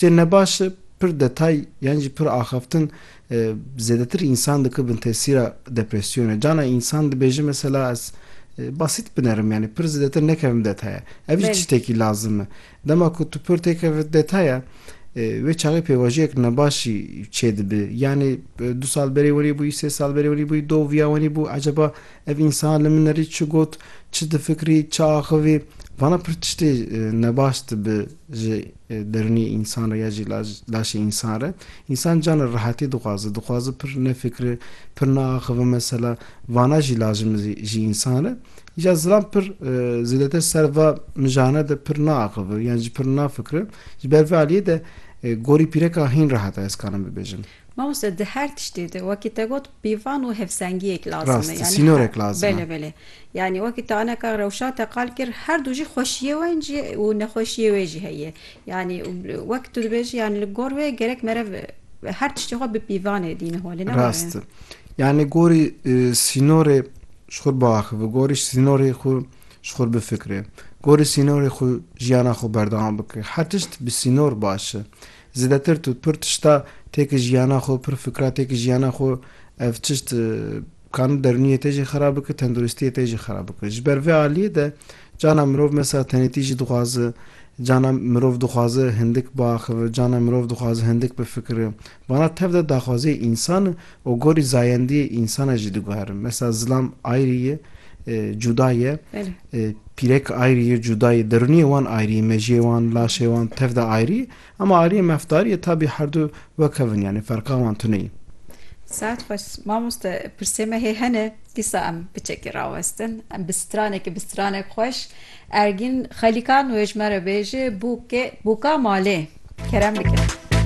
Cih ne baş e, pir detay yan jî pir axaftin zêdetir însan dike bin tesîra depresyonê. Cana însan dibêje mesela ez basît binerim yanî pir zêdetir nekevim detaya. Ev jî tiştekî lazim e. Dema ku tu pir têkeve detaya wê çaxê pêvajiyek nebaşî çêdibe. Yanî du sal berê wenî bûyî, sê sal berê wenî bûyî, do viya wenî bû eceba ev însan li min erî çi got, çi difikirî, çi axivî. Vana pir tiştê nebaş dibe ji Derûnê însan re ya jî laşê însan re. Însan cana rehatî dixwaze. Dixwaze pir nefikire, pir neaxive mesela. Vana jî lazim e ji însan re. Îcar zilam pir zêdetir ser va mijane de pir neaxive yan jî pir nefikire. Ji ber vê aliyê de gorî pîreka hîn rehat e ez karim bibêjim. Mamoste di her tiştê de wekî te got pîvan û hevsengiyek lazim e. Rast e, sînorek lazim e. Belê belê. Yanî wekî te aneka rewşa te qal kir her du jî xweşiyê wen jî û nexweşiyê wê jî heye. Yanî wek tu dibêjî yanî li gor wê gerek mere her tiştê xwe bi pîvanê dîne holê ne were? Rast e. Yanî gorî sînorê ji xwe biaxive, gorî sînorê xwe ji xwe bifikire, gorî sînorê xwe jiyana xwe berdewam bike. Her tişt bi sînor baş e. Zêdetir tu pir tişta têkil jiyana xwe, pir fikra têkil jiyana xwe, ev tişt kani derûniyê te jî xera bike, tenduristiyê te jî xera bike. Ji ber vê aliyê de cana mirov mesela tenêtî jî dixwaze, cana mirov dixwaze hindik biaxive, cana mirov dixwaze hindik bifikire. Vana tev de daxwaziyê însan e û gorî zayendiyê însan e jî diguherin. Mesela zilam ayrî ye, cuda ye. Pîrek ayrî yê cuda yê. Derûniyê wan ayrî yê, mejiyê wan, laşê wan tev de ayrî yê. Ema ayriyê mafdarî yê tabî herdu wek hev in yanî ferqa wan tune yê. Saet xweş mamoste pirsê me hê hene dîsa em biçekî rawestin em bi stranekî bi stranek xweş Ergîn xelîkan wê ji me re bêje bûkê bûka malê kerem bike.